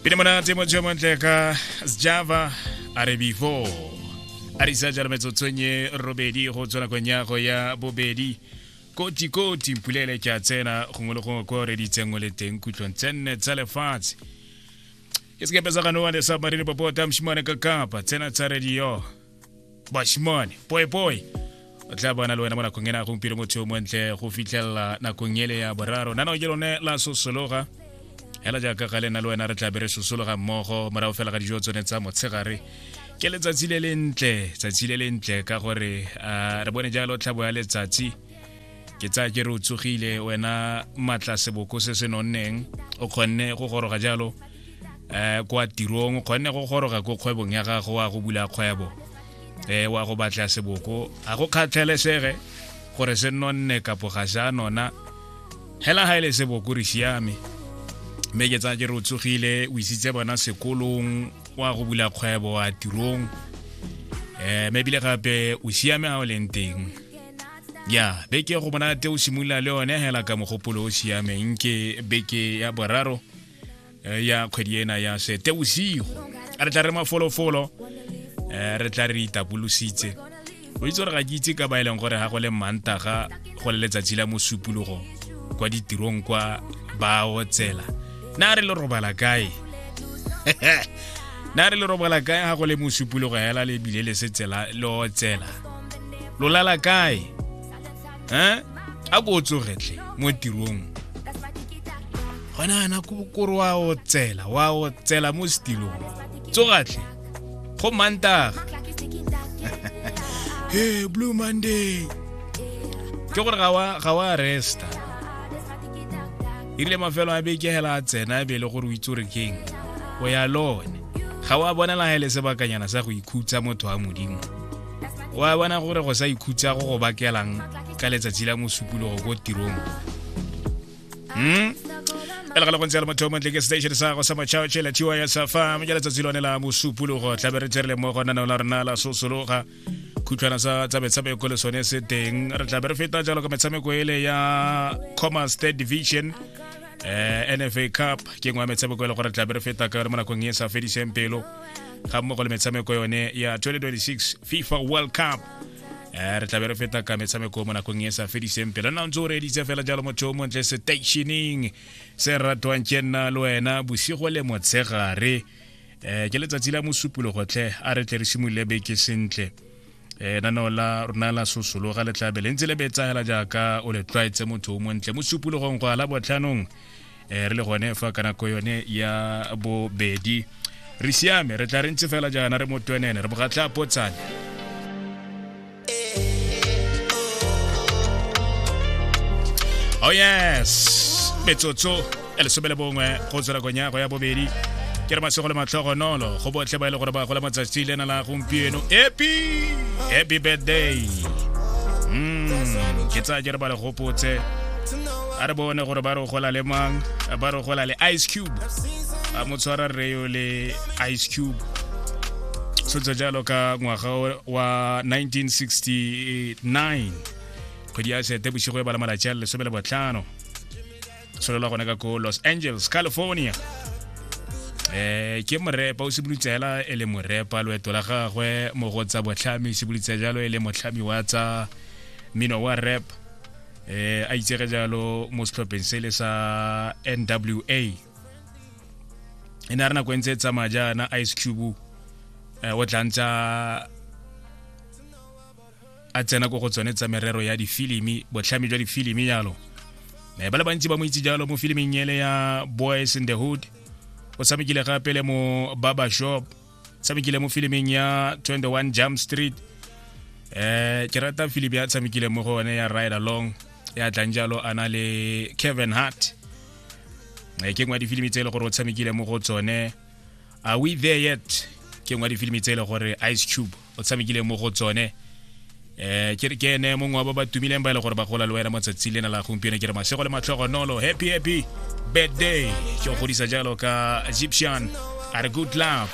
pele monate mo jo montle ka sjava a re before a re sa jalo metsotswenye robedi go tswa nakong ya go ya bobedi koti koti mpulele ke a tsena gongwe le gongwe ko reditseng o le teng kutlwong tse nne tsa lefatshe ke sekepe sa ganoa le submarine popota moshimane ka kapa tsena tsa radio bashimane poepoe o tla bana le wena mo nakong ena gompieno motho yo montle go fitlhelela nakong ele ya boraro nano ke lone la sosologa hela jaaka ga lena le wena re tla be re sosologa mmogo morago fela ga dijo tsone tsa motshegare ke letsatsi le lentle tsatsi le lentle ka gore re bone jalo tlhabo ya letsatsi ke tsaya ke re o tsogile wena matla seboko se se nonneng o kgonne go goroga jalo um kwa tirong o kgonne go goroga ko kgwebong ya gago wa go bula kgwebo um wa go batla seboko ga go kgatlhelesege gore se nonne kapo ga se a nona hela ga e le seboko re siame mme ke tsaya ke re o tsogile o isitse bona sekolong wa go bula kgwebo wa tirong um mme ebile gape o siame ga o leng teng ya beke go monate o simolola le yone hela ka mogopolo o siameng ke beke ya boraro eh, ya kgwedi ena ya seteusigo re tla re mafolofolo eh, re tla re itapolositse o itse gore ga ke itse ka ba e leng gore ga go le mantaga go le letsatsi la mosupologo kwa ditirong kwa bao tsela na re le robala kae na re le robala kae ga go le mosupologo hela le bile le setsela lo tsela lo lala kae eh a ko o tsogetlhe mo tirong gona yana kore wa o tsela wa o tsela mo setilong tsogatlhe go mantaga he blue monday ke gore ga wa resta erile mafelo a beke hela a tsena e be e le gore o itse gore keng o ya lone ga wa bonela ga e le sebakanyana sa go ikhutsa motho wa modimo wa bona gore go sa ikhutsa go go bakelang ka letsatsi la mosupologo ko tirong hmm? e le ga le gontse ya le motho o montle ke station sa go sa matšhaotšhe la tiwa ya safam ke letsatsi lone la mosupologo tlabe re tserele mo gona nao la rona la sosologa khutlhwana sa tsa metshameko le sone se teng re tlabe re feta jalo ka metshameko ele ya commerce state division um eh, nfa cup ke ngwe ya metshameko e le gore tlabe re feta ka yone mo nakong e sa fediseng pelo ga mmogo le metshameko yone ya 2026 fifa world cup eh, re tlabe re feta ka metshameko mo nakong e sa fediseng pele nna ntse o reeditse fela jalo motho o montle stationing se ratwang ke nna le wena bosigo le motshegare um ke letsatsi la mosupologotlhe a re tle re simolole beke sentle e naneo la rona la sosologa le tlabe le ntse le betsagela jaaka o le tlwaetse motho o montle mo supologong go ala botlhanong e re le gone fa ka nako yone ya bobedi re siame re tla re ntse fela jaana re motwenene re bogatla potsane Oh yes, metsotso ya lesome le bongwe go tswela konyago ya bobedi ke re masego le matlhogonolo go botlhe ba e le gore ba gola matsatsi le na la gompieno epi happy birthday mm, ke tsaya ke re ba le gopotse a re bone gore ba re gola le mang ba re gola le ice cube a mo tshwara reo le ice cube tshotse jalo ka ngwaga wa 1969 kgwedi ya sete bosigo e bala malatsi a lesome le botlhano tsholelwa gone ka ko los angeles california eh ke morepa o simolotse hela e le morepa loeto la gagwe mo go tsa botlhami simolotse jalo e le motlhami wa tsa mmino wa rap eh a itsege jalo mo setlhopheng se le sa nwa e ne a re nako e ntse e tsamaya jaana ice cube eh, o tla ntsa a tsena ko go tsone tsa merero ya difilimi botlhami jwa difilimi jalo me ba le bantsi ba mo itse jalo mo filiming ele ya boys in the hood o tshamekile gape le mo baba shop tshamekile mo filiming ya 21 jump street eh ke rata filimi ya tshamekile mo go one ya ride along ya tlang jalo a na le kevin hart eh, ke ngwa difilimi tse e le gore o tshamekile mo go tsone are we there yet ke ngwa difilimi tse e le gore ice cube o tshamekileng mo go tsone eh ke ke ene mongwe wa ba ba tumileng ba ile e gore ba gola le wena mo tsatsi lena la gompieno ke re masego le matlhogo nolo happy happy birthday ke go godisa jalo ka Egyptian are good love